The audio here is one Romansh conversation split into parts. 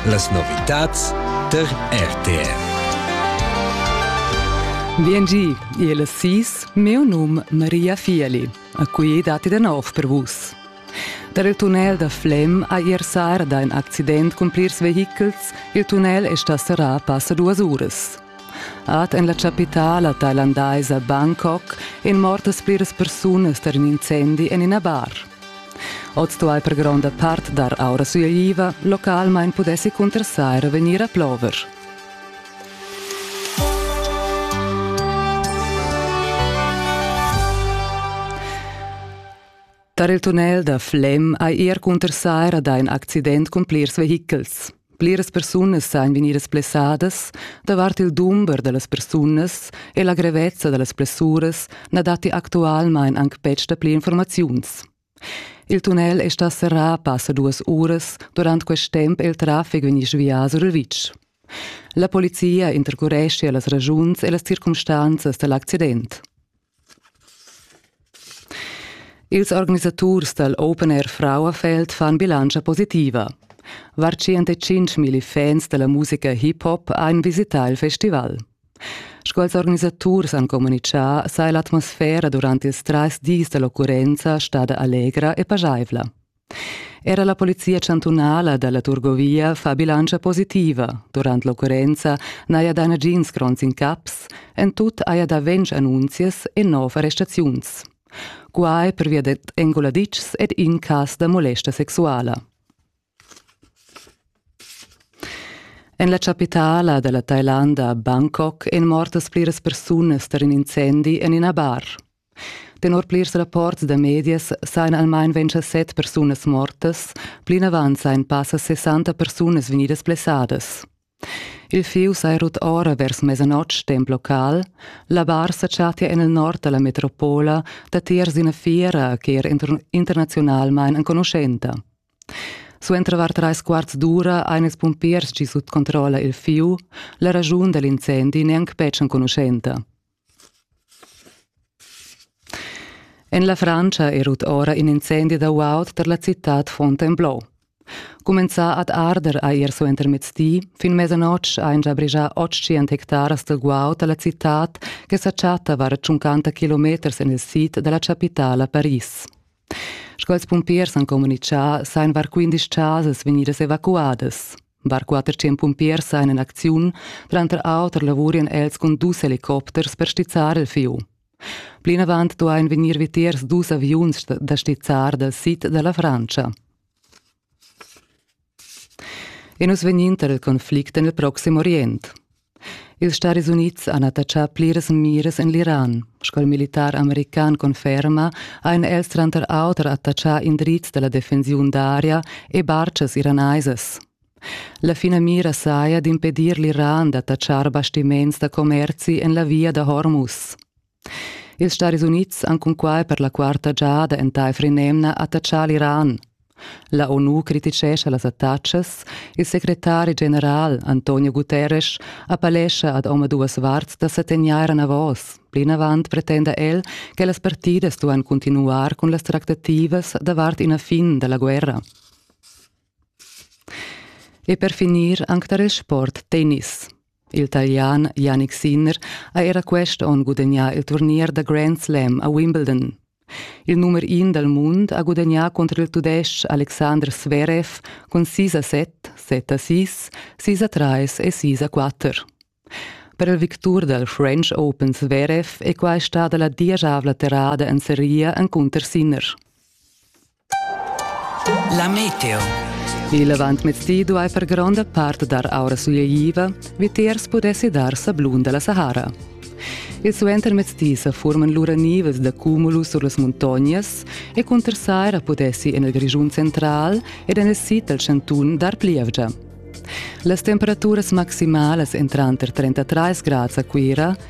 Las novitads tar RTR. Viengì il sis, meu num Maria Fieli, a cui datti da nov per vus. Per il tunnel da Flem ha ier sarda in accident cun plirs vehichels. Il tunnel è stà serrà passa duas uras. Ad en la chapitala thailandaisa Bangkok èn mortas pliras persunas tar in incendi en ina bar. Oz sto ei per gronda part dar aura sui aviva, localmein pudessi cuntersair vegnir a plover. Tar il tunnel da Flem ei er cuntersaira da in accident cun plirs vehichels. Pliras persunas san vegnidas blessadas davart il dumber da las persunas e la grevezza da las blessuras na datti actualmain anc betg dapli informaziuns. Il tunnel è stà serrà passa duas uras, durant quest temp è il traffic vegnì svià sur il vitg. La polizia intercureschia las ragiuns e las circumstanzas da l'accident. Ils organisaturs dal Open Air Frauenfeld fan bilantscha positiva. Var 105 milli fans da la musica hip-hop han visità il festival. Sco ils organisaturs han communitgà, saja l'atmosfera durant ils trais dis da l'occurrenza stada allegra e pajaivla. Era la polizia chantunala da la Turgovia fa bilantscha positiva. Durant l'occurrenza n'haja dà nagins gronds incaps, en tut haja dà ventg annunzias e nov arrestaziuns. Quai pervia dad enguladitschs ed in cas da molesta sexuala. En la chapitala da la Thailanda, Bangkok, èn mortas pliras persunas tar in incendi en ina bar. Tenor plirs rapports da medias sajan almain ventisset persunas mortas, plinavant sajan passa 60 persunas vegnidas blessadas. Il fieu saja rut ora vers mesanotg temp local, la bar sa chattia en il nord da la metropola datiers d'ina fiera che era internaziunalmain enconuschenta. Suenter var trais quarts d'ura ein ils pumpiers gi sut controlla il fiu, la raschun da l'incendi neanc betg enconuschenta. En la Frantscha è rut ora in incendi da guaud tar la citad Fontainebleau. Cumenzà ad arder ha er suentermezz di, fin mesanotg ha già brigià 800 hectaras da guaud a la citad che sa chatta var 50 kilometers en il sid da la chapitala Paris. Sco ils pumpiers han communitgà sain var 15 chasas vegnidas evacuadas. Var 400 pumpiers han in acziun, tranter auter lavurian els cun dus helicopters per stizzar il fieu. Plinavant duain vegnir vitiers dus aviuns da stizzar dal sid da la Frantscha. E nus vegnin tar il conflict en il Proxim Orient. Ils Staris Unids han attachà pliras miras en l'Iran. Sco il militar american conferma, han els tranter auter attachà indrizs da la defensiun d'aria e bartgas iranaisas. La finamira saja d'impedir l'Iran d'attachar bastiments da commerzi en la via da Hormuz. Ils Staris Unids han cunquai per la quarta giada entaifer in'emna attachà l'Iran. La ONU criticescha las attacas. Il secretari general Antonio Guterres appellescha ad omaduas varts da sa tegnair enavos. Plinavant pretenda el che las partidas duan continuar cun las tractativas davart ina fin da la guerra. E per finir anc tar il sport tennis. Il Italian Yannick Sinner ha era quest onn gudagnà il turnier da Grand Slam a Wimbledon. Il numer in dal mund ha gudagnà contro il Tudestg Alexander Zverev cun 6 a 7, 7 a 6, 6 a 3 e 6 a 4. Per il victur dal French Open Zverev è quai stada la diesavla terrada en seria encunter Sinner. La meteo. Il avantmezdi duai far gronda part dar aura sugliaiva, vitiers pudessi dar sablun da la Sahara. Il suentermezdi sa forman lura nivas da cumulus sur las muntognas e cunter saira pudessi en il Grischun central ed en il sid dal chantun dar plievgia. Las temperaturas maximalas èn tranter 33 grads a Cuira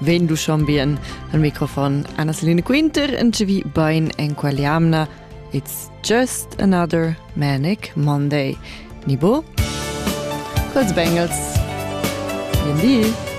Ven du schon bien al microfon Anna Selina Quinter en vi bain en qualiamna. It's just another manic Monday. Nibo? Cos Bengals. Bien di.